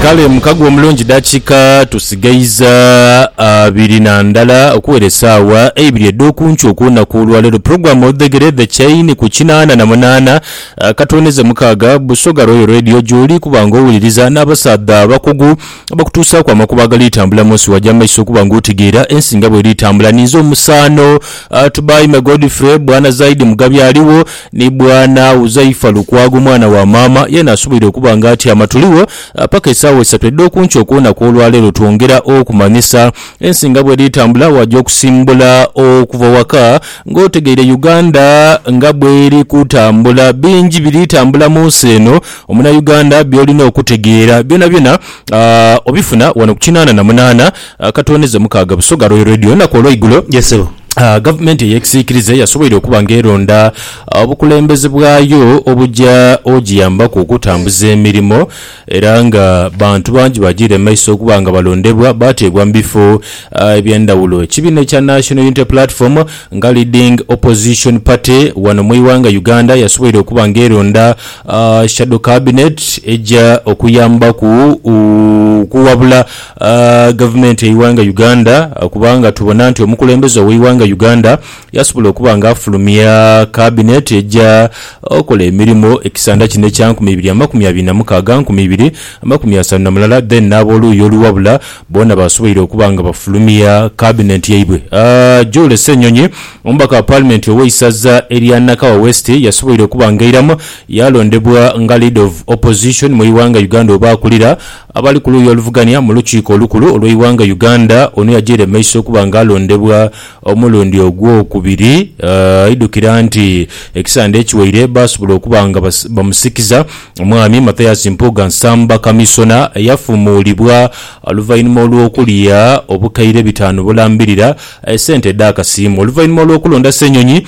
Kale mukago omulungi dakiika tusigaiza abiri na ndala okuwera esaawa eibiri edh'okunkyo okulunaku olwaleero. Pulogulamu odhegere The Chain ku kinaana na munaana katwoneze mukaaga Busoga Royal Radio gyoli kuba nga owuliriza n'abasaadha abakugu abakutuusaaku amakubo agali tambula munsi waja mumaiso okuba nga otegeera ensi nga bweri tambula. Ninze omusaano Tubaime Godfrey, Bwana Zaidi Mugabi aligho. Ni Bwana Huzaifa Lukwago mwana wa maama yeena asoboire okuba nga atyama tuligho paka esaawa isatu edh'okunkyo okw'olunaku olwaleero twongera okumanyisa ensi nga bwedhitambula waja okusimbula okuva waka nga otegeire Uganda nga bweri kutambula bingi biri tambula munsi eno omunayuganda byolina okutegeera byonabyona obifuna wano ku kinaana na munaana Akatondeze mukaaga Busoga Royal Radio enaku olweigulo. Yes sebo. Gavumenti eyekisiikirize yasoboire okuba nga eronda obukulembeze bwayo obuja ogiyambaku okutambuza emirimo era nga bantu bangi bajiire mu maiso okuba nga balondebwa bateebwa mu bifo ebyendhawulo. Ekibiina ekya National Unity Platform nga leading opposition party wano mu ighanga Uganda yasoboire okuba nga eronda shadow cabinet eja okuyambaku okuwabula Gavumenti yeighanga Uganda kubanga tubona nti omukulembeze oweighanga Uganda yasobola okuba nga afulumya kabineti eja okola emirimo ekisanda kino ekya nkumi ibiri amakumi abiri namukaaga nkumi ibiri amakumi asanu namulala then n'aboluuyi oluwabula boona basoboire okuba nga bafulumya kabinenti yaibwe. Julie Ssenyonyi omubaka wa palimenti oweisaza erya Nakawa West yasoboire okuba nga airamu yalondebwa nga leader of opposition mwighanga Uganda oba akulira Abali ku luuyi oluvugania mu Lukiiko Olukulu olw'eighanga Uganda, ono yajaire mu maiso okuba nga alondebwa omulundi ogwokubiri, aidhukira nti ekisande ekiwaire baasobola okuba nga bamusikiza Omwami Mathias Mpuuga Nsamba Kamisona eyafumuulibwa oluvainhuma olw'okulya obukaire bitaanu bulambirira sente edh'akasiimo oluvainhuma olw'okulonda Ssenyonyi